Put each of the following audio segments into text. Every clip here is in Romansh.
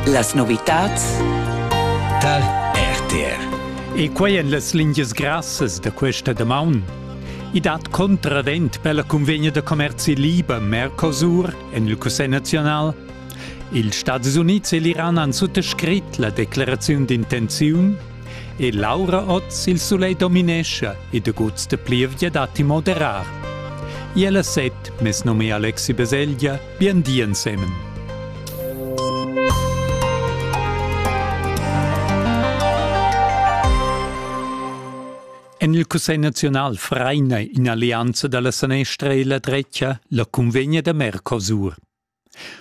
Las novitads tar RTR. E quai en las lingias grassas da questa damaun. I dat contravent per la convegna da commerzi liber Mercosur en il Cussegl nazional. Ils Stati Unids e l'Iran han suttascrit la declaraziun d'intenziun e Laura Oz il sulegl dominescha e de guts de plievgia datti moderar. Iela set, mes nome Alexi Beselja, Bien di ensemen. En il Cussegl nazional fraina in'allianza dalla sanestra e la drecha la cunvegna da Mercosur.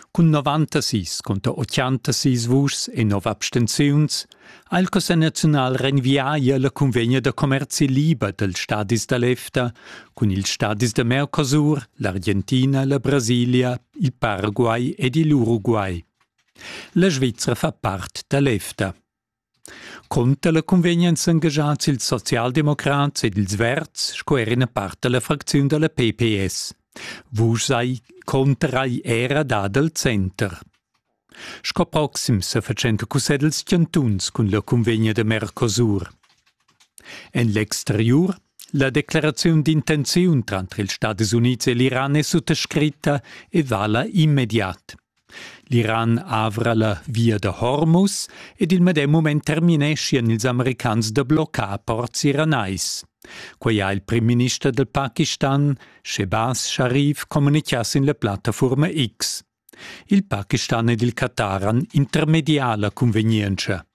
Cun 96 conter 86 vuschs e 9 abstenziuns ha il Cussegl naziunal renvià la cunvegna da commerzi liber dals stadis da l'EFTA cun ils stadis da Mercosur, l'Argentina, la Brasilia, il Paraguay ed il Uruguay. La Svizra fa part da l'EFTA. Conter la cunvegna èn s'engagiads ils socialdemocrats ed ils verds sco er ina part da la fracziun da la PPS. Vus sei conterai era dad al center. Sco proxim se fatschenta cussegls chantuns cun la cunvegna de Mercosur. En l'exteriur la declaraziun d'intenziun tranter ils Stati Units e l'Iran è suttascritta e vala immediat. L'Iran avra la via da Hormuz ed il medem moment termineschian ils americans da bloccar ports iranais. Quai ha il primminister del Pakistan, Shehbaz Sharif, communichà sin la plattaforma X. Il Pakistan ed il Qatar han intermedià la cunvegnientscha.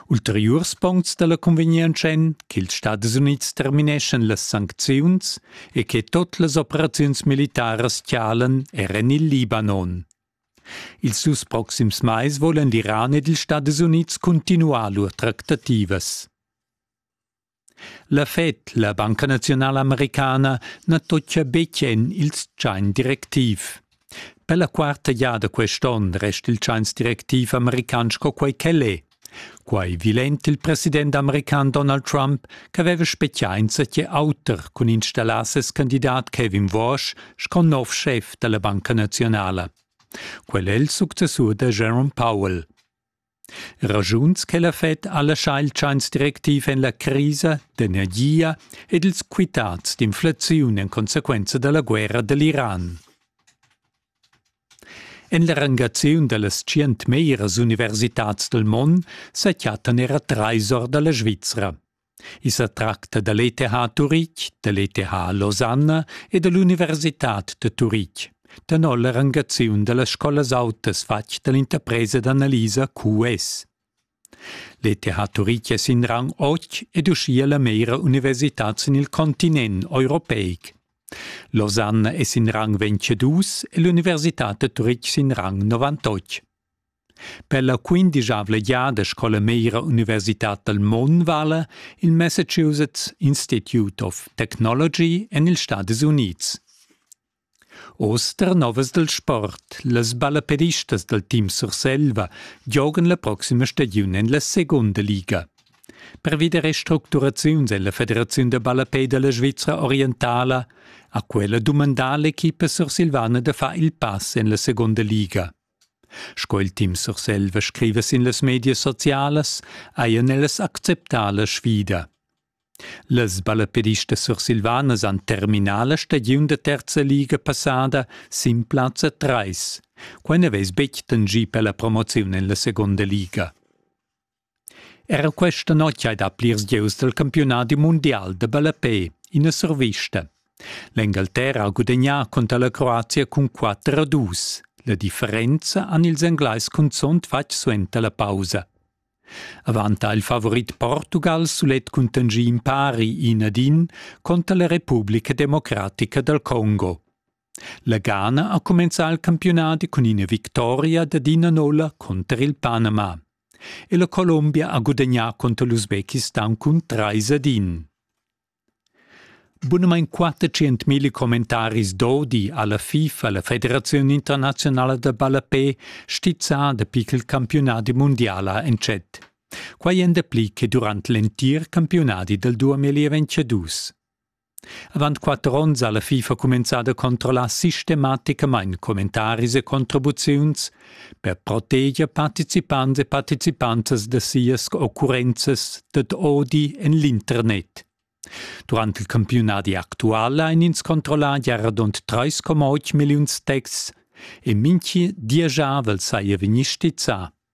Ulteriurs puncts da la cunvegnientscha èn ch'ils Stadis Unids termineschan las sancziuns e che tut las operaziuns militaras tialan er en il Libanon. Ils dus proxims mais volan l'Iran ed ils Stadis Unids cuntinuar lur tractativas. La Fed, la Banca naziunala americana, na tocca betg en il tschain directiv. Per la quarta giada quest onn resta il tschains directiv american sco quai ch'el è. Quai vilent il president american Donald Trump ch'aveva spezià insatge auter cun installar ses candidat Kevin Walsh sco nov schef da la Banca naziunala. Quel è il successur da Jerome Powell. Raschuns che la Fed ha laschà il tschains directiv en la crisa d'energia ed ils quitads d'inflaziun en consequenza da la guerra da l'Iran. En la rangaziun da las tschient meras universitads dal mond sa chattan era trais or da la Svizra. I sa tracta da l'ETH Turitg, da l'ETH Losanna e da l'Universitad da Turitg. Tenor la rangaziun da las scolas autas fatg da l'interpresa d'analisa QS. L'ETH Turitg è sin rang 8 ed uschia la meira universitad sin il continent europeic. Losanna è sin rang 22 e l'Universitad da Turitg sin rang 98. Per la quindischavla giada scola meira Universitad dal Mon vala il Massachusetts Institute of Technology en ils Stadis Unids. Oz ternovas dal sport, las ballaperistas dal team Surselva giogan la proxima stagiun en la segunda liga. Pervi da restructuraziuns en la Federaziun da ballapè da la Svizra orientala ha quella dumandà l'equipa sursilvana da far il pass en la segunda liga. Sco il Tim Surselva scriva sin las medias socialas, hajan ellas acceptà la sfida. Las ballaperistas sursilvanas han terminà la stagiun da terza liga passada sin plazza 3. Quai n'avess betg tangì per la promoziun en la segunda liga. Era questa notg hai dà plirs gieus dal campiunadi mundial da ballapè, ina survista. L'Engalterra ha gudagnà cunter la Croazia cun 4 a 2. La differenza han ils Englais cunzunt fatg suenter la pausa. Avant ha il favorit Portugal sulet contingì in pari in ad in conter la Repubblica democratica dal Congo. La Ghana ha cumenzà il campiunadi cun ina victoria dad ina nolla cunter il Panama. E la Colombia ha gudagnà cunter l'Usbekistan cun trais ad in. Bunamain 400.000 commentaris d'odi ha la FIFA, la Federaziun internaziunala da ballapè, stizzà dapi ch'il campiunadi mundiala entschet. Quai èn dapli che durant l'entir campiunadi dal 2022. Avant quatter onns ha la FIFA cumenzada a controllar sistematicamain commentaris e contribuziuns per proteger participants e participantas da sias occurrenzas dad odi en l'internet. Durant il campiunadi actual ein ins controllà gia radund 3,8 milliuns texts e minchi diesgiavel saja vegni stizzà.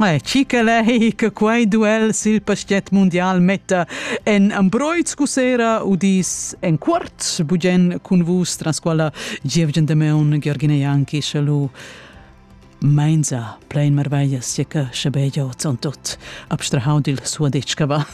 Eh, chi che lei che quei duel sil pastet mundial metta en Ambroiz cusera udis en quart bugen cun vus tras quella Gievgen de Meun Georgina Janki shalu Mainza plein marveglia sieca schabegia ton tot abstrahau dil suo detschava.